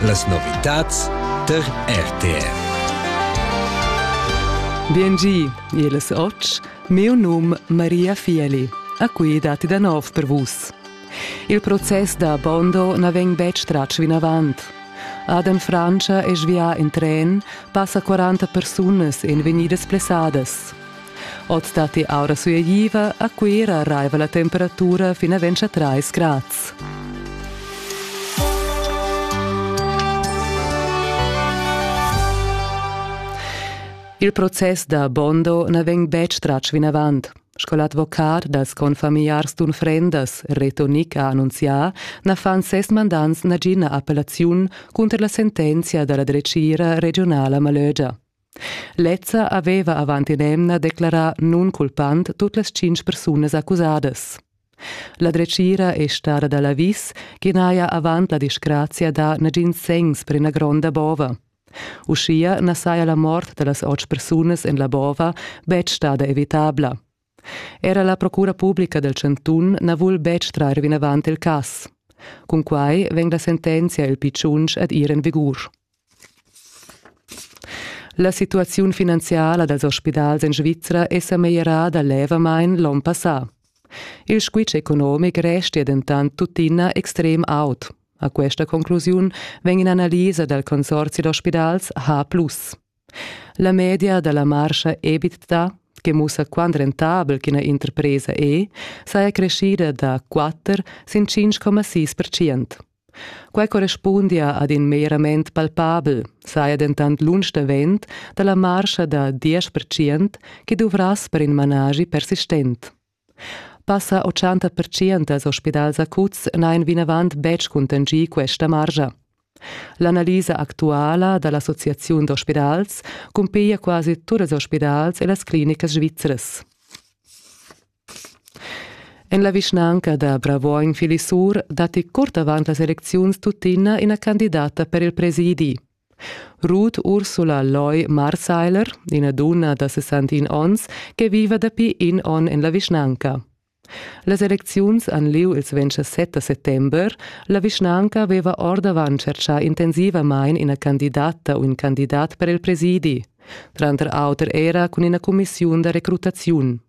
Las novitads tar RTR. Biengi, el es och, meu num Maria Fieli. A qui dati da nov per vus. Il process da Bondo na vegn betg tratg vinavant. Adam Francia è svià in tren, passa 40 persunas en vegnidas plessadas. Oz datti aura sueigliva, a Cuira raiva la temperatura fin a 23 grads. Il process da Bondo na vegn betg tratg vinavant. Sco l'advocat dals confamiliars d'unfrendas Reto Nick ha annunzià, na fan ses mandants nagina appellaziun cunter la sentenzia da la dretgira regiunala Malögia. Lezza haveva avant in'emna declarà nunculpant tut las tschintg persunas accusadas. La dretgira è stada da l'avis ch'i n'haja avant la disgrazia dà nagins segns per ina gronda bova. Uschia na saja la mort da las otg persunas en la bova betg stada evitabla. Era la procura publica dal chantun na vul betg trair vinavant il cas. Cun quai vegn la sentenzia il pi tschunsch ad ir en vigur. La situaziun finanziala dals ospidals en Svizra è sa meglierada levamain l'onn passà. Il squitsch economic restia dentant tuttina extrem aut. A questa conclusiun vegn in'analisa dal consorzi d'ospidals H. La media da la marscha EBITDA, che mussa quant rentabel ch'ina interpresa è, saja creschida da 4 sin 5,6 percent. Quai correspundia ad in merament palpabel, saja dentant lunsch davent da la marscha da 10 percent che duvrass per in managi persistent. Passa ochanta pertschient dals ospidals acuts n'hain vinavant betg cuntanschì questa margia. L'analisa actuala da l'associaziun d'ospidals cumpiglia quasi tuts ils ospidals e las clinicas svizras. En la vischnanca da Bravuogn Filisur datti curt avant las elecziuns tuttina ina candidata per il presidi. Ruth Ursula Loy Marseiler, ina dunna da 61 onns che viva dapi in onn en la vischnanca. Las elecziuns han lieu ils 27 da settember. La vischnanca aveva ordavant tschertgà intensivamain ina candidata u in candidat per il presidi, tranter auter era cun ina cumissiun da recrutaziun.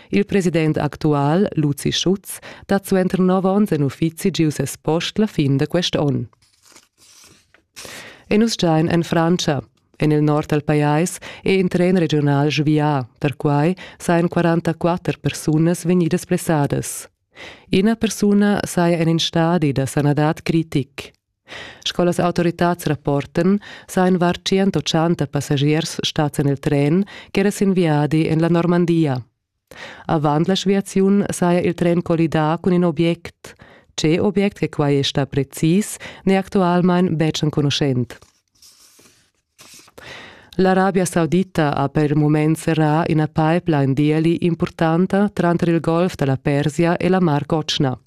Il president actual, Luzi Schutz, dat suenter nov onns en uffizi giu ses post la fin da quest onn. E nus giain en Frantscha. En il nord dal pajais è in tren regional svià, perquai sajan 44 persunas vegnidas blessadas. Ina persuna saja en in stadi da sanadad critic. Sco las autoritads rapportan, sajan var 180 passagiers stads en il tren ch'era sin viadi en la Normandia. Avant la sviaziun saja il tren collidà cun in object. Tge object che quai è stà precis, n'è actualmain betg enconuschent. L'Arabia Saudita ha per mument serrà ina pipeline d'ieli impurtanta tranter il Golf da la Persia e la Mar Cotschna.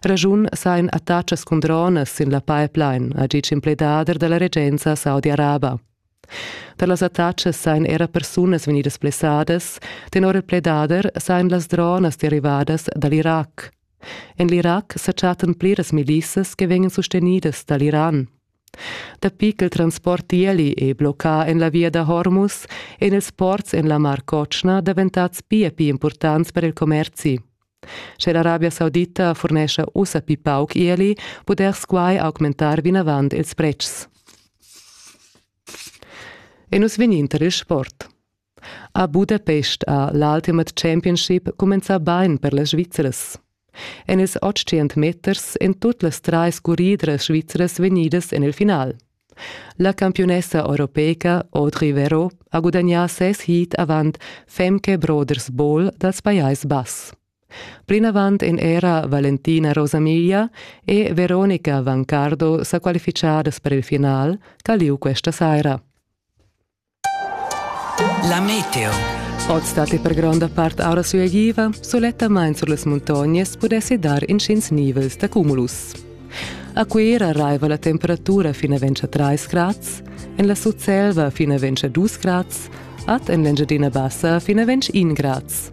Raschun sain attachas cun dronas sin la pipeline, ha ditg in pledader da la regenza saudi-araba. Per las attachas sain era persunas vegnidas blessadas, tenor il pledader sain las dronas derivadas da l'Irac. En l'Irac sa chattan pliras milissas che vegnan sustenidas da l'Iran. Dapi ch'il transport ieli è bloccà en la via da Hormus èn ils ports en la Mar Cotschna daventads pia pli impurtants per il commerzi. Sche l'Arabia Saudita furnescha ussa pli pauc ieli, pudess quai augmentar vinavant ils pretschs. E nus vegnin tar il sport. A Budapest ha l'Ultimate Championship cumenzà bain per las Svizras. En ils otg meters èn tut las trais curridras svizras vegnidas en il final. La campiunessa europeica Audrey Vero ha gudagnà ses heat avant Femke Brothers Ball dals Pajais Bass. Plinavant èn era Valentina Rosamiglia e Veronica Vancardo sa qualifichadas per il final ch'ha lieu questa saira. La meteo. Oz dat per gronda part aura suagiva, sulettamain sur las muntognas pudessi dar intgins nivels da cumulus. A Cuera raiva la temperatura fin a 3 grads, en la Sutselva fin a 2 grads, ad en l'Engiadina Bassa fin a 21 grads.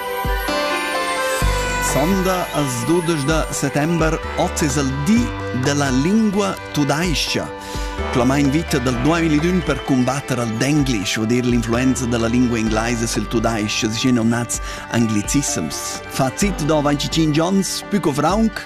Sonda as dudesch da settember ot es il di della lingua tudais-cha, clamain vita dal 2001 per cumbatter al Denglisch, vuol dir l'influenza della lingua inglese sul tudais-ch, schi nomnats anglicissims. Fazit do 25 ons, pü co fraunc,